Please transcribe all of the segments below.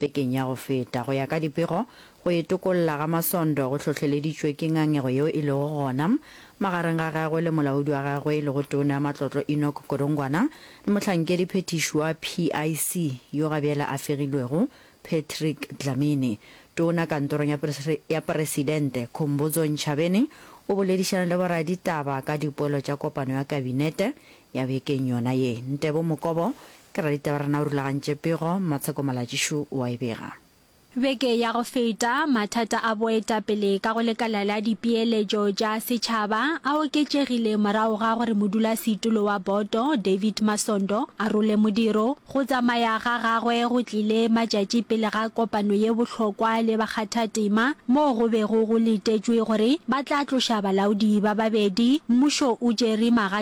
Bekeng ya go feta, go ya ka dipego, go itokolla ga Masondo go hlohleleditšwe ke ngangego yeo e lego gona magareng ga gagwe le molaodi wa gagwe e lego Tona ya Matlotlo Enoch Godongwana le mohlankedi phethiši wa PIC yo ga bjale a fegilwego Patrick Dlamini. Tona kantorong ya ya Presidente, Khombodzo Ntshabeni o boledišana le boraditaba ka dipoelo tša kopano ya Kabinete ya bekeng yona ye. Ntebo Mokobo Ke raditaba rena o rulagantše pego, Matsheko Malatšišu o a e bega. Beke ya go feta, mathata a boetapele ka go lekala la dipeeletšo tša setšhaba a oketšegile morago ga gore modulasetulo wa boto, David Masondo, a role modiro. Go tsamaya ga gagwe go tlile matšatši pele ga kopano ye bohlokwa le bakgathatema moo go bego go letetšwe gore ba tla tloša balaodi ba babedi mmušo o tšere magatša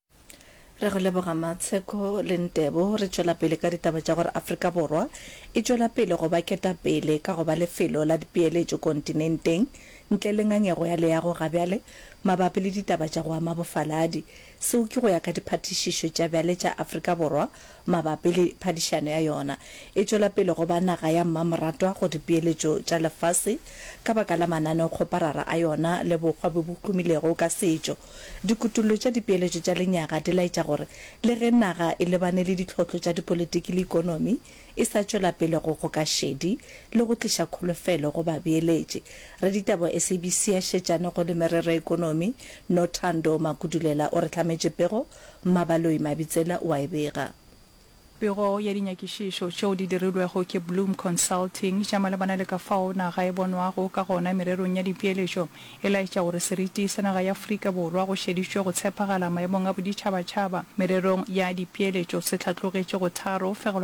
Re go leboga Matsheko le Ntebo. Re tšwela pele ka ditaba tša gore Afrika Borwa e tšwela pele go ba ketapele ka go ba lefelo la dipeeletšo kontinenteng ntle le ngangego ya leago ga bjale mabapi le ditaba tša go ama bofaladi. Seo ke go ya ka diphathišišo tša bjale tša Afrika Borwa mabapi le phadišano ya yona e tšwela pele go ba naga ya mmamoratwa go dipeeletšo tša lefase ka baka la mananeokgoparara a yona le bokgwa bjo bo humilego ka setšo. Dikutollo tša dipeeletšo tša lenyaga di laetša gore le ge naga e lebane le ditlhohlo tša dipolitiki le ikonomi, e sa tšwela pele go goka šedi le go tliša kholofelo go babeeletši. Raditaba wa SABC a šetšane go le merero ya ikonomi, Nothando Makudulela o re hlametše pego Mmabaloi Mabitsela o a e bega. Pego ya dinyakišišo tšeo di dirilwego ke Bloom Consulting tša malebana le ka fao naga e bonwago ka gona mererong ya dipeeletšo e laetša gore seriti sa naga ya Afrika Borwa go šeditšwe go tshepagala maemong a boditšhabatšhaba mererong ya dipeeletšo se hlatlogetše go tharo fegelwa